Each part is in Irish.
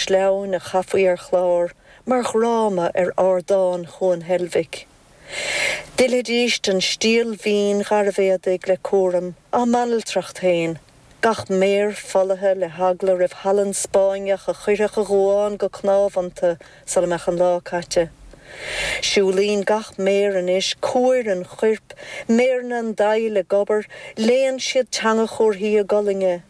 Sleamhain a chaithfí ar chlár mar dhráma ar ardán Chuan Heilbhic. D'fhillfidís den stiall mhín gharbh éadaigh le cúram, á mbanaltracht féin, gach méar folaithe le heagla roimh shalann Spáinneach a chuirfeadh a dhuán go cnámh iontu sula mbeadh an lá caite. Siúlaíonn gach méar anois cuair an choirp, méireanna an daill ag obair, léann siad teanga chúrthaí a gcolainne.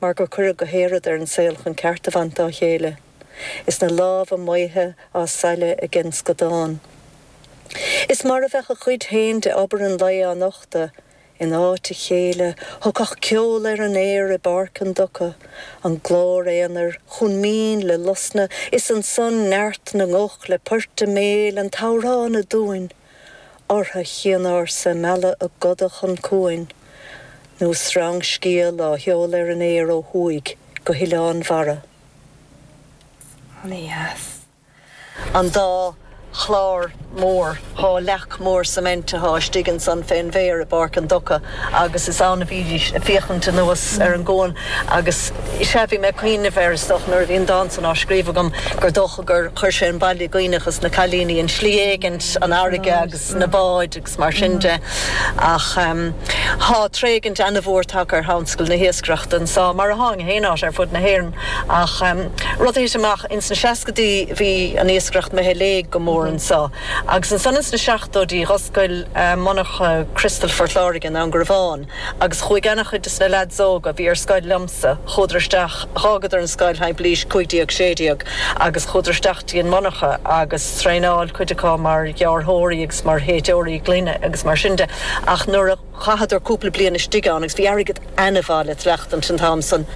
mar gur cuireadh gach aon rud ar an saol chun ceart a bhaint dá chéile, is na lámha maotha á sailleadh aige an scadán. Is mar a bheadh a chuid féin de obair an lae á nochtadh in áit a chéile, thagadh ceol ar an aer i bpáirc an dumhcha, an glór aonair chomh mín le hosna is ansan neart na nguth le poirt a mbéil, an t-amhrán aduain. Ortha chianársa ag mealladh a gcoda chun cuain, nó sreangscéal á sheoladh ar an aer ó thuaidh go hoileáin mhara. Ana-dheas. An dá chlár mór, dhá leac mhór cement athá istigh ansan fén bhféar i bPáirc an Dumhca, agus is ann a bhídís ag féachaint anuas ar an gcuan agus sea, bhí mé ag cuimhneamh air, is dócha, nuair a bhí an dán san á scríobh agam, gur dócha gur chuir sé an baile i gcuimhne dhos na cailíní, i slí éigint, an fharraige agus na báid agus mar sin de. Ach tá tréigint ana-mhór tagtha ar thionscal na hiascaireachta anso, mar a tháing in haon áit ar fud na hÉireann, ach rud a thit amach ins na seascaidí, bhí an iascaireacht imithe i léig go mór anso. Agus ansan ins na seachtóidí dh'oscail monarcha Crystal Phort Láirge i nDún Garbhán agus chuaigh ana-chuid des na leaids óga a bhí ar scoil liomsa, chuadar isteach, dh'fhágadar an scoil timpeall aois 15, 16 agus chuadar isteach go dtí an monarcha agus traenáil cuid acu mar ghearrthóirí agus mar shéidteoirí gloine agus mar sin de ach nuair a Chaitheadar cúpla bliain istigh ann agus bhí airgead ana-mhaith le tuilleachtaint an t-am san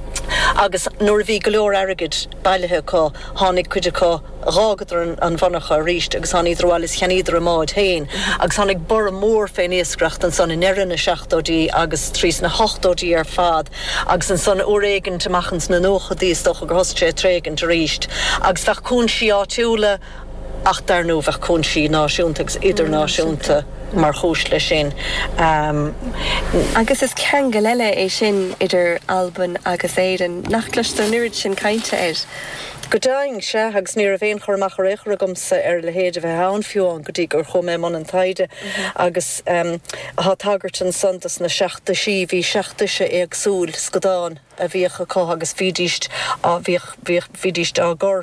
agus nuair a bhí go leor airgid bailithe acu tháinig cuid acu, dh'fhágadar an mhonarcha arís agus tháiníodar abhaile is cheannaíodar a mbáid féin agus tháinig borradh mór fén iascaireacht ansan i ndeireadh na seachtóidí agus trís na hochtóidí ar fad agus ansan uair éigint amach ins na nóchaidí is dócha gur thosaigh sé ag tréigint arís agus bheadh cúinsí áitiúla ach dar ndóigh bheadh cúinsí náisiúnta agus idirnáisiúnta mar chúis leis sin. Agus is ceangal eile é sin idir Albain agus Éirinn nach gcloistear an oiread sin cainte air. Go deimhin, sea, agus ní raibh aon chur amach ar aon chor agamsa ar a leithéid a bheith ann, fiú amháin go dtí gur chuaigh mé i mbun an taighde. Agus tá tagairt ansan dos na seacht dtoisí, bhí seacht dtoise éagsúil scadán a bhíodh acu agus bhídís á, bhíodh, bhíodh, bhídís á gcur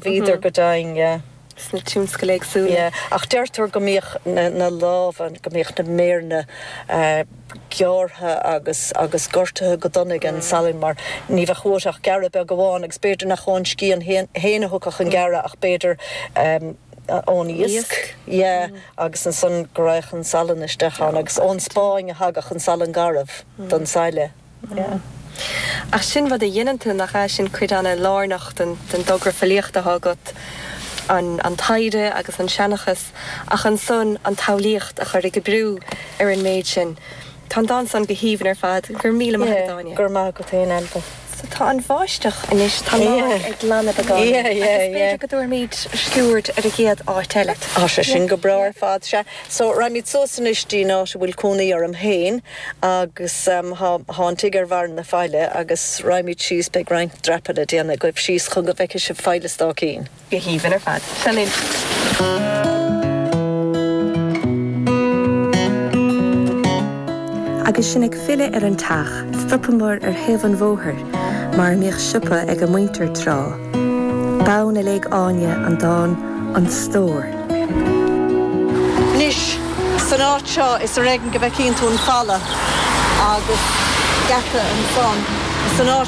Bhíodar go daingne sna tionscail éagsúla. Ach deirtear go mbíodh na lámha, go mbíodh na méireanna gearrtha agus gortaithe go dona ag an salann mar ní bheadh uait ach gearradh beag amháin agus b'fhéidir nach ón scian féin a thiocfadh an gearradh ach b'fhéidir ón iasc. Agus ansan go raghadh an salann isteach ann agus ón Spáinn a thagadh an salann garbh don sailleadh. Yeah. Ach sin rud a dheineann tú, nach ea? Sin cuid an-lárnach den dtogra filíochta atá agat, an taighde agus an seanchas, ach ansan an tsamhlaíocht a chur ag oibriú ar an méid sin. Tá an dán san go haoibhinn ar fad. Go raibh míle maith agat, Áine. Yeah. Go raibh maith agat féin, Ailbhe. So tá an bháisteach anois, tá an lá ag glanadh beagán. Yeah, yeah, yeah. Agus b'fhéidir go dtabharfaimid sciúird ar an gcéad áit eile. Tá sé sin go breá ar fad. Sea, so raghaimid suas anois dtí'n áit a bhfuil cónaí orm féin. Agus thá an tigh ar bharra na faille agus raghaimíd síos, beidh roinnt dreapadh le déanamh agaibh síos chun go bhfeice sibh Faill an Stáicín. Go haoibhinn ar fad. Seo linn. Agus sinn ag filleadh ar an teach, stopamar ar thaobh an bhóthair, mar a mbíodh siopa ag a muintir tráth. B'ann a léigh Áine an dán 'An Stór'. Anois, san áit seo, is ar éigean go bhficeann tú an falla agus geata ansan. San áit seo.